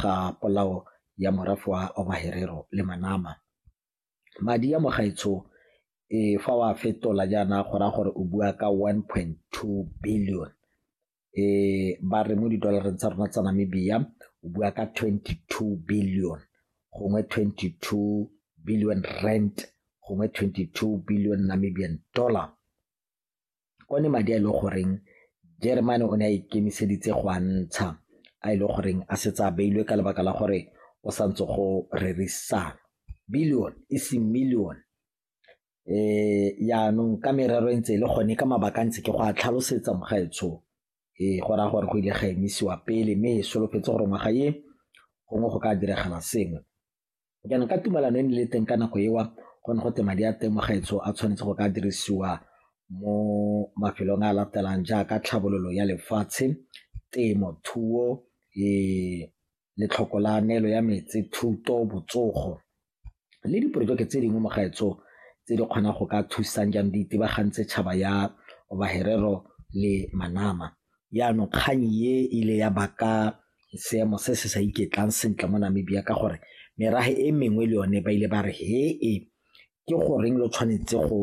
ga polao ya morafe wa Ovaherero le Manama. Madi a mo gaetsho e fa wa fetola jaana go raya gore o bua ka 1.2 billion e ba re mo didolareng tsa rona tsa Namibia o bua ka 22 billion gongwe 22 billion rand gongwe 22 billion Namibian dollar one madi a e leng goreng Jeremane o ne a ikemiseditse go a ntsha a e leng goreng a setse a beilwe ka lebaka la gore o sa ntse go rerisana billion e seng million um yaanong ka merero e ntse e le gone ka mabaka a ntse ke go a tlhalosetsa mogaetsho ee go raya gore go ile ga emisiwa pele mme e solofetse gore ngwaga e gongwe go ka diragala sengwe Jaanong ka tumalano e ne le teng ka nako ewa go ne go te madi a temogetso a tshwanetse go ka dirisiwa mo mafelong a latelang jaaka tlhabololo ya lefatshe, temo, thuo, letlhoko la neelo ya metsi, thuto, botsogo le diporojeke tse dingwe mo gaetsho tse di kgonang go ka thusang jang di itebagantse tšhaba ya Baherero le Manama. Jaanong kgang e ile ya baka seemo se se sa iketlang sentle mo Namibia ka gore merafe e mengwe le yone ba ile ba re he e ke goreng lo tshwanetse go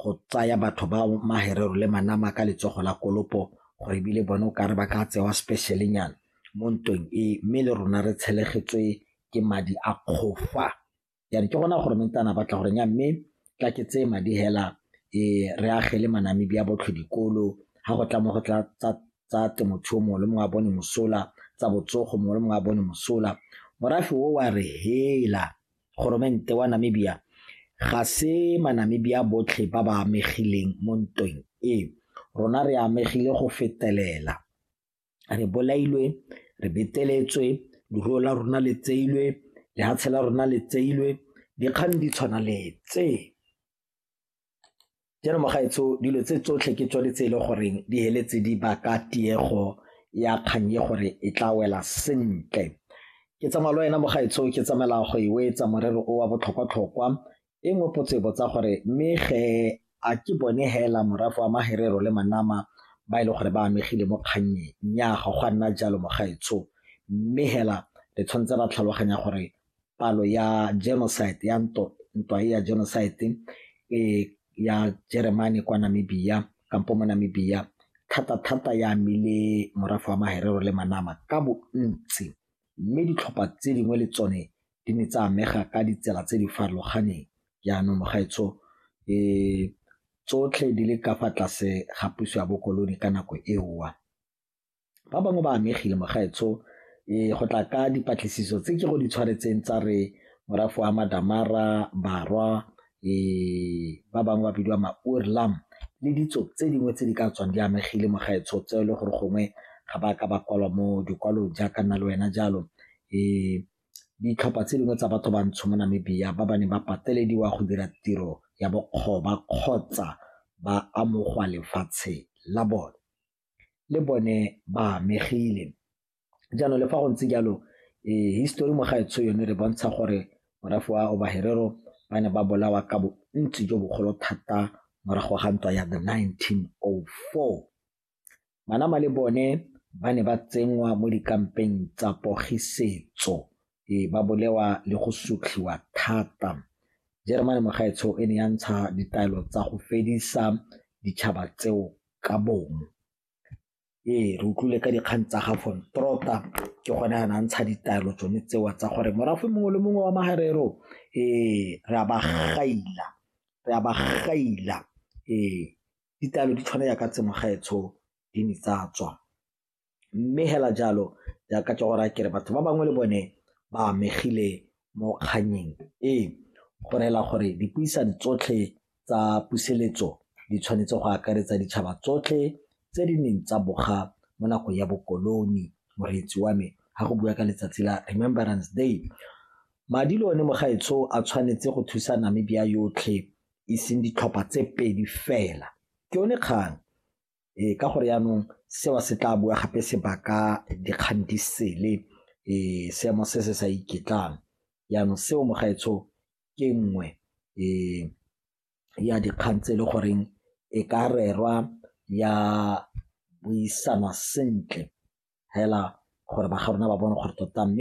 go tsaya batho ba maherero le manama ka letsogo la kolopo gore ebile bone o kare ba ka tsewa specialenyana mo ntweng e mme le rona re tshelegetswe ke madi a kgofa. ya re ke gona gore mentana batla gore nya mme tla ke tseye madi hela e re agele manamedi a botlhe dikolo ga go tla mo go tla tsa temothuo mongwe le mongwe a bone mosola tsa botsogo mongwe le mongwe a bone mosola morafe o wa re hela goromente wa namibia ga se manamibia botlhe ba ba amegileng mo ntweng e rona re amegile go fetelela re bolailwe re beteletswe leruo la rona le tseilwe lehatshe la rona le tseilwe dikgang di tshwana le tse jaanong mogaetsho dilo tse tsotlhe ke tsone tse e le goreng di heletse di baka tiego ya kgang e gore e tla wela sentle ke tsamaya le wena mogaetsho ke tsamaela go e wetsa morero o wa botlhokwa-tlhokwa E nngwe potso e botsa gore mme ge a ke bone hela morafe wa Maherero le Manama ba e le gore ba amegile mo kgannyeng? Nnyaa, ga go a nna jalo mogaetsho. Mme hela re tshwanetse ra tlhaloganya gore palo ya genocide ya ntwa e ya genocide e ya Jeremane kwa Namibia kampo mo Namibia thata-thata ya amile morafe wa Maherero le Manama ka bontsi, mme ditlhopha tse dingwe le tsone di ne tsa amega ka ditsela tse di farologaneng jaanong mogaetsho tsotlhe di le ka fa tlase ga puso ya bokolone ka nako eowa ba bangwe ba amegile mogaetsho um go tla ka dipatlisiso tse ke go di tshwaretseng tsa re morafo wa madamara barwa um ba bangwe ba bidiwa maurlam le ditso tse dingwe tse di ka tswang di amegile mogaetsho tse e le gore gongwe ga ba ka ba kwalwa mo dikwalong jaaka nna le wena jalo um ditlhopha tse dingwe tsa batho bantsho mo Namibia ba ba neng ba patelediwa go dira tiro ya bokgoba kgotsa ba amogwa lefatshe la bone le bone ba amegile. Jaanong le fa go ntse jalo eh, histori mo gaetsho yone re bontsha gore morafe wa Obaherero ba ne ba bolawa ka bontsi jo bogolo thata morago ga ntwa ya the 1904 Manama le bone ba ne ba tsenngwa mo dikampeng tsa pogisetso ee ba bolewa le go sutlhiwa thata jeremane mogaetsho e ne ya ntsha ditaelo tsa go fedisa ditšhaba tseo ka bong ee re utlwile ka dikgang tsa ga von trota ke gone a na ntsha ditaelo tsone tsewa tsa gore morafe mongwe le mongwe wa magarero ee re a ba gaila re a ba gaila ee ditaelo di tshwana yaka tse mogaetsho di ne tsa tswa mme hela jalo jaaka ke gore kere batho ba bangwe le bone ba amegile mo kganyeng e go reela gore dipuisano tsotlhe tsa puseletso di tshwanetse go akaretsa ditšhaba tsotlhe tse di neng tsa boga mo nakong ya bokoloni moreetsi wa me ga go bua ka letsatsi la remembrance day madi le one mogaetsho a tshwanetse go thusa namibia yotlhe e seng ditlhopha tse pedi fela ke yone kgang ee ka gore yaanong seo se tla bua gape se baka dikgang di sele um seemo se se sa iketlang yaanong seo mogaetsho ke nngwe um ya dikgang tse e le goreng e ka rerwa ya buisanwa sentle fela gore ba ga rona ba bone gore tota mme